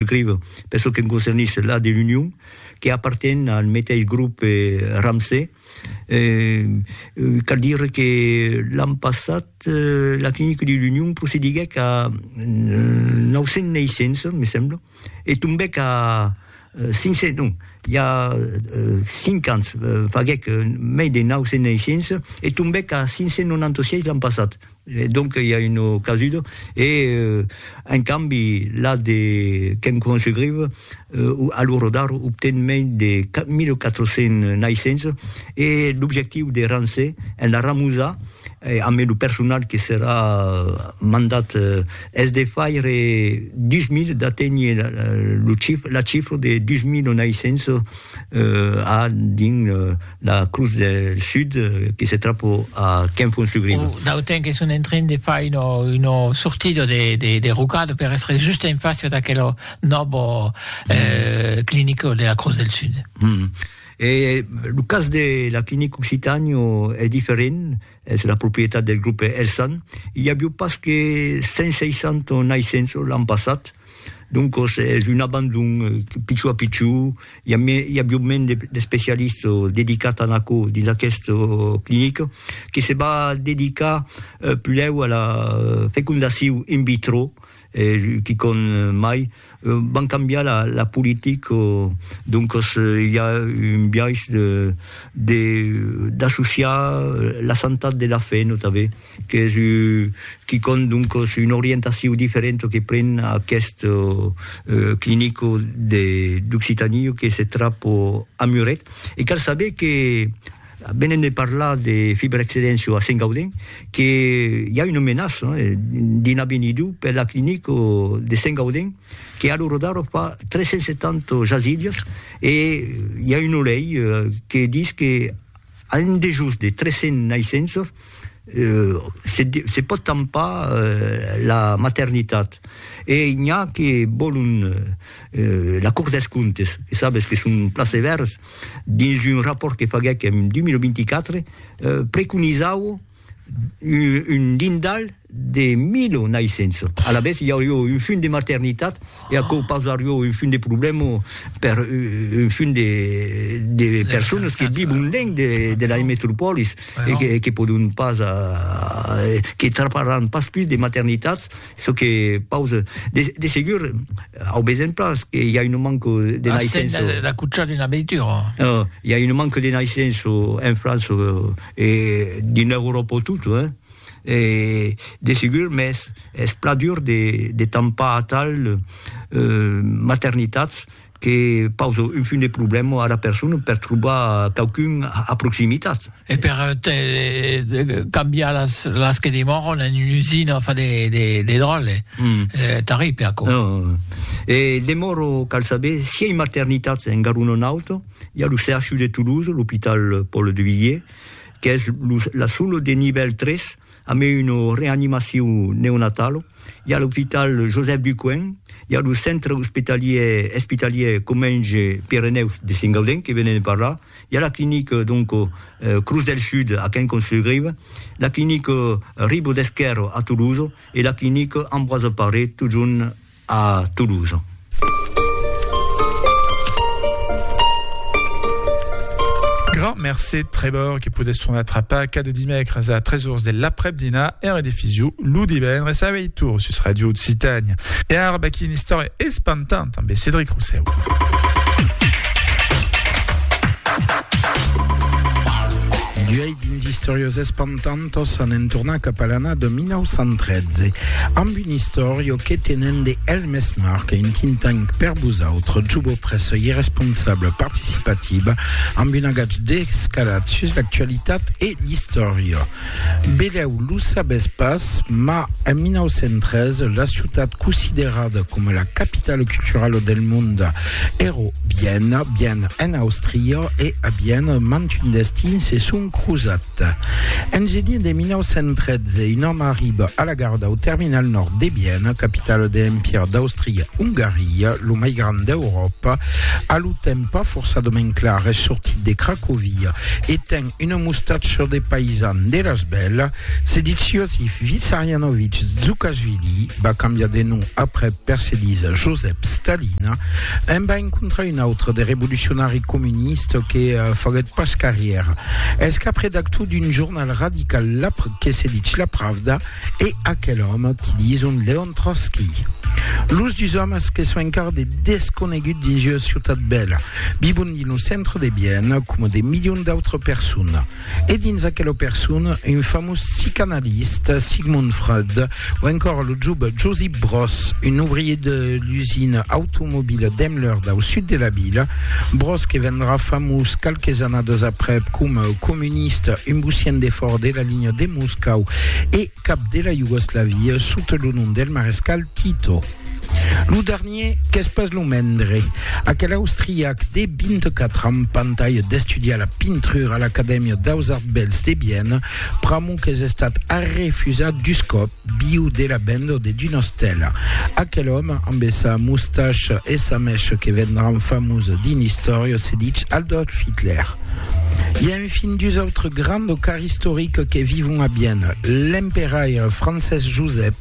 Grève, per çò que me concernís, la de l'Union, que aparten al meteis grop Ramsay. Cal dire que l'an passat la clinica de l'Union procediguèc a 900 neissents, me sembla, e tombèc a 500, non, i a 5 ans faguèc mei de 900 neissents e tombèc a 596 l'an passat. E donc i a una casuda. E en cambi la de Ken Kwan-Sugreve a lo rodar obten mei de 1400 naissents e l'objectiu de Ramsay en la ramusa ambe lo personal que serà mandat es de faire 2000, d'aténher la chifra de 2000 naissents a dins la crus del sud que se trapo a Quenfonsugrido. O d'auten que son en train de far uno, uno surtido de, de, de rocado per estre just en facio d'aquelo nobo eh, clinico de la crus del sud. E lo cas de la clinic Occitanio es diferent? Es la proprietat del grupe Elsan. I avió pas que 160 naissençs l'an passat, doncos es un abandon pichó a pichó. I avió mens d'especialist dedicat a aquò dins aquest clinic que se va dedicar pulèu a la fecondacion in vitro, quicòm mai. Van cambiar la politic, doncas i a un biais d'associar la santat de la fe, notave, qu'es quicòm, doncas, una orientacion diferenta que pren aqueth clinic d'Occitanie que se trap a Muret. E cal saber que, Venent de parlar de fibrexcedéncia a Sengaudin, que i a una menaça d'una benidou per la clinica de Sengaudin, que a lo rodar fa 370 jasidias, e i a una lei que dis que a un dejós de 300 naissenças se se pòt tampar la maternitat. E n'i a que vòlon la Cort dels Comptes, que sabes que son plaseverds, dins un rapòrt que faguèc en 2024, preconizau un dindal de milo naissenço. Alavetz, i aurió un funt de maternitat e aquò pausarió un funt de problèma per un funt de personas que vivon lenc de las metropòlis e que pòdon pas, que traparàn pas pus de maternitats. Çò que pause, de, de segur, au besen pas, que i a un manque de naissenço. Asten de, de cuchar d'una veitura. No, i a un manque de naissenço en França, e d'una Euròpa tot, hein. E, de segur, mès es pla dur de, de tampar atal euh, maternitats, Que pausa un fum de problèma ara persona per trobar quauqu'un a proximitat. E per cambiar las que demòran en una usina fa de dròlle tarripe aquò. E demòro cal saber si ei maternitats en Garona Nauta, i a lo CHU de Toulouse, l'Hopital Paul Duvivier, qu'es la sola de nivèl 3 A mai una reanimacion neonatala, i a l'opital Joseph Ducoing, i a lo centre ospitalier espitalier Comenge Pirenèus de Sengaudin que venèm de parlar, i a la clinica donc Cruz del Sud a Quincamps-sur-Grive, la clinica Ribaud d'Esquèrre a Tolosa e la clinica Ambroise Paré totjorn a Toulouse. Grand mercé Trevor que podes tornar atrapar cada dimècres a 3 ors de l'aprèp-dinar e en redifusió lo divendres a 8 ors sus Radio Occitània. E ara vaquí una istòria espantanta amb Cédric Rosseu. D'uèi dins Istòrias espantantas Nosautos anem tornar cap a l'ana de 1913 amb un istòrio que tenen de El Mes Marc, un think tank per vosautre, Jubo Pressa e responsable participativa, amb un agatge descalat sus l'actualitat e l'istòria. Belèu lo sabètz pas, ma en 1913 la ciutat considerada coma la capitala culturala del mond èra Viena, Viena en Austria, e a Viena mantun destin se son crosat. Nòrd-Sud-Èst. En gener de 1913, un òme arriba a la gara dau terminal nòrd de Viena, capitala de l'Empire d'Àustria-Ongaria, lo mai grand d'Euròpa, a lo temps pas forçadament clar, es sortit de Cracovia e ten una mustacha de paisan de las bèlas, se ditz Iosif Vissarianovich Dzoukashvili, va cambiar de nom après per se diza Josep Stalin, en va encontrar un autre de revolucionari comunista, Baptiste que faguèt pas carrièra. Es cap redactor d'un jornal radical lap que se ditz La Pravda e aquel òme qui dison Leon Trotsky. Los dus òmes que son encara de desconegut dins ua ciutat bèla, vivon dins lo centre de Viena coma de milions d'autres personas. E dins aquela persoun, un famós psicanalista, Sigmund Freud, o encòra lo job Josip Broz, un ouvrier de l'usina automobila Daimler dau sud de la vila, Broz que vendrà famós qualques annadas aprèp coma comunista, un bocian de fòra de la linha de Moscau e, cap de la Iugoslavia sota lo nom del marescal Tito. Lo dernier qu'es pas lo mendre, aquel austriac de 24 ans pantalha d'estudiar la pintrura a l'Acadèmia daus Arts Bèls de Viena, pr'amor qu'es estat arrefusat dus còp viu de la venda de d'una estèla. Aquel òme amb sa mustacha e sa mècha que vendràn famós dins l'istòria se ditz Adolf Hitler. Fin dus autres grands locars istoriques que vivon a Vienne, l'emperaire Francés Josep,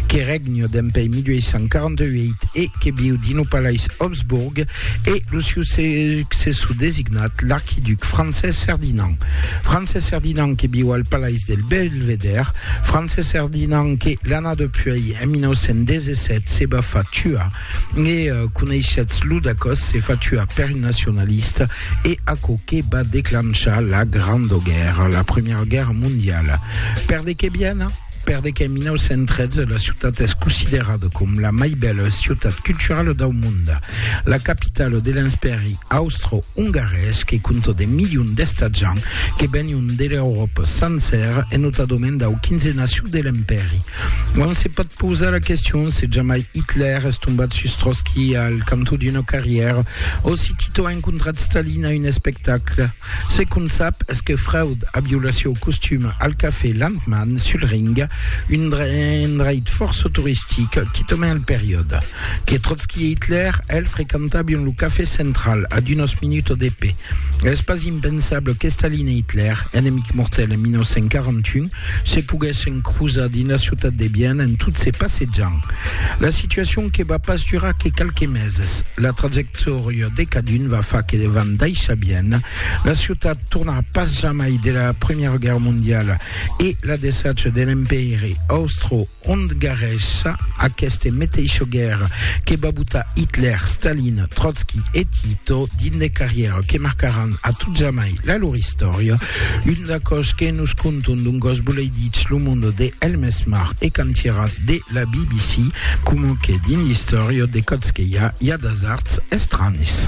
que règne dempuèi 1848 e que viu dins lo palais Habsburg, e lo siu successor designat, l'arquiduc Francés Ferdinand. Francés Ferdinand que viu al palais del Belvedère, Francés Ferdinand que, l'anada puèi, en 1917, se va far tuar E coneishetz lo d'acòs se fa tuar per un nacionalista e aquò que va declanchar la Granda Guèrra, la Primièra Guèrra Mondiala. Per de qué Viena? Per de qué en 1913 la ciutat es considerada com la mai bèla ciutat culturala dau monde, la capitala de l'Enspèri austro-ongarés que compta de milions d'estatjants que venion de l'Euròpa sancèra e notadament dau quinzenaciu de l'Empèri. On se pòt pausar la question se jamai Hitler es tombat sus Trotski al cantó d'una carrièra o si Tito a encontrat Stalin a un espectacle. Ce qu'on sap es que Freud a violat sieu costum al cafè Landmann sul Ring, un endreit fòrça toristic quitament al periòde, que Trotski e Hitler el frequentabion lo cafè central a d'unas minutas de pè. Es pas impensable que Stalin e Hitler, enemics mortèls en 1941, se poguèssen crosar dins la ciutat de Viena en tot se passejant. La situacion que va pas durar que qualques meses. La trajectòria de cadun va far que van daishar Viena. La ciutat tornarà pas jamai de la Premiera Guèrra Mondiala e la desacha de l'Empèiri Austro ont garrèssa aqueste meteisho guèrra que va botar Hitler, Stalin, Trotsky e Tito dins de carrièra que marcaràn a tot jamai la lor istòria, un d'acò's que nos conton d'un gòs boleiditz lo monde de Helmesmar e cantièrat de la BBC, coma que dins l'istòria de Còtzqueia i a d'asards estranis.